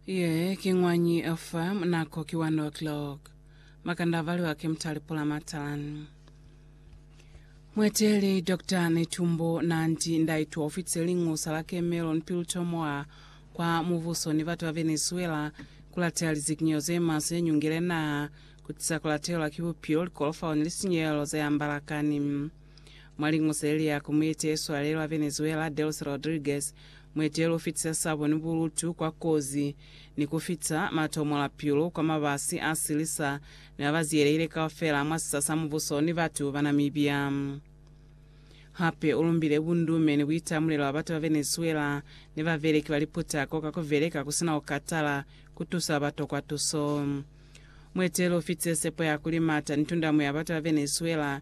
Ye ki Ñwañi fa nako ki 1 o'clock. Makanda a valiwa ki Mutali Pula Matalan. Mweteli Dr. Netumbo Nandi Ndaitwa ufitise lingusa la Cameron Piltomoa kwa mubuso ni batu ba Venezuela kulateha lizikinyeho ze maswe ze nyungile naha, kutisa kulatelwa ki bupilo, likolofao ni lisinyehelo ze ambalakani. Mwa lingu ze li ya ku mueteeli swalelo wa Venezuela, Delcy Rodriguez, mueteeli u fitisa sabo ni bulutu kwa kozi ni ku fita matomo la pilu kwa mabasi a silisa ni a ba ziyelehile kaufela mwa sisa sa mubuso ni batu ba Namibia. Hape u lumbile bundume ni buitamulelo bwa batu ba Venezuela ni babeleki ba liputako ka ku beleka ku sina ku katala ku tusa ba ba tokwa tuso. Mueteeli u fitise sepo ya kuli mata ni tundamo ya batu ba Venezuela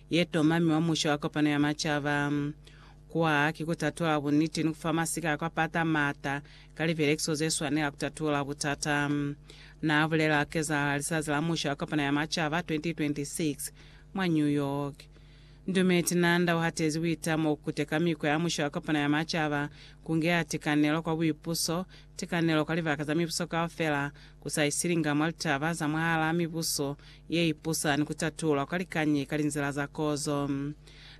ye tomami wa Musha wa Kopano ya Macaba. Kwa ki ku tatula buniti ni ku fa masika a kwa pata maata ka lipelekiso ze swanela ku tatula butata, na bulela ha kezahala Lisazi la Musha wa Kopano ya Macaba 2026 mwa New York. Ndume Tinanda u hatezi buitamo ku kuteka mikwa ya Musha wa Kopano ya Macaba ku ngeha tikanelo kwa buipuso, tikanelo kwa libaka za mibuso kaufela, ku sa isilinga mwa litaba za mwahalaa mibuso ye ipusa ni ku tatulwa kwa likañi ka linzila za kozo.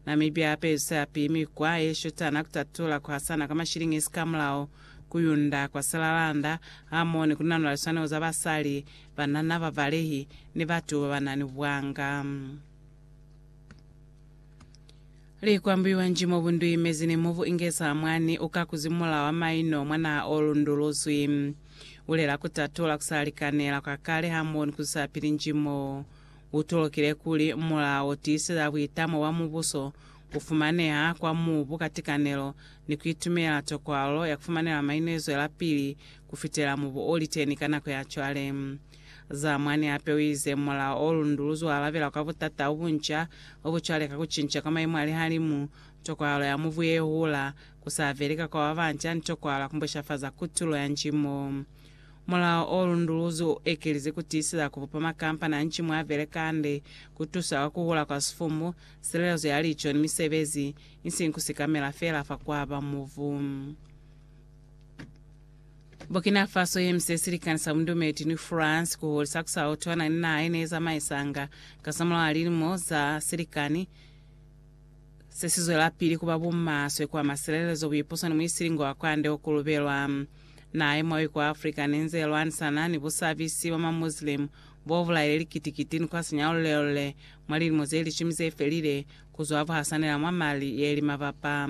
Namibia hape izwisa yapili mikwa ye shutana ya ku tatula ku hasana kwa mashilingisi ka mulao, ku yunda kwa silalanda, hamoho ni ku nanula liswanelo za basali, banana, bavalehi, ni batu ba ba na ni buanga. Li kwambiwa nji mobu nduimezi ni mobu ingeza mwani uka kuzimula wa maino mwa naha o lunduluzwi. Bulela kutatola kusa likanela kwa kale hamoho ni kuzusa pili nji mo utolokile kuli mulao wo tiiseza buitamo bwa mubuso, kufumaneha kwa mubu ka tikanelo, ni kuitumela tokwalo ya kufumanela maino yezwelapili kufitela mubu oliteni ka nako ya cwale. Za mwani hape u ize, Mulao o lundu lu zualabela kwa butata u bunca, u bu cwale ka ku cinca kwa maimu a lihalimu, tokwahalo ya mubu ye hula, ku sa veli ka kwa ba banca, ni tokwahalo ya ku mbweshafaza kutulo ya ncimo. Mulao o lundu lu zu ekelize ku tiiseza ku bupa makampani a ncimo a beleka hande, ku tusa kwa ku hula kwa sifumu, silelezo ya lico, ni misebezi, isiñi ku sikamela feela fa ku aba mubu. Burkina Faso ye mise silikani sa bundumeli ni France ku hulisa ku sa utwana ni naha ye ne zamaisanga kasamulaho lilimo za silikani se si zwelapili ku ba bumaswe kwa masilelezo, buipuso ni muisilingo wa kwande o kulubelwa. Naha ye mwawi kwa Africa ne nze lwanisana ni busabisi bwa maMuslim bo bulaile likiti-kiti ni kwa sinyalulelule mwa lilimo ze lishumi ze felile ku zwa buhasanela mwa mali ye li mabapa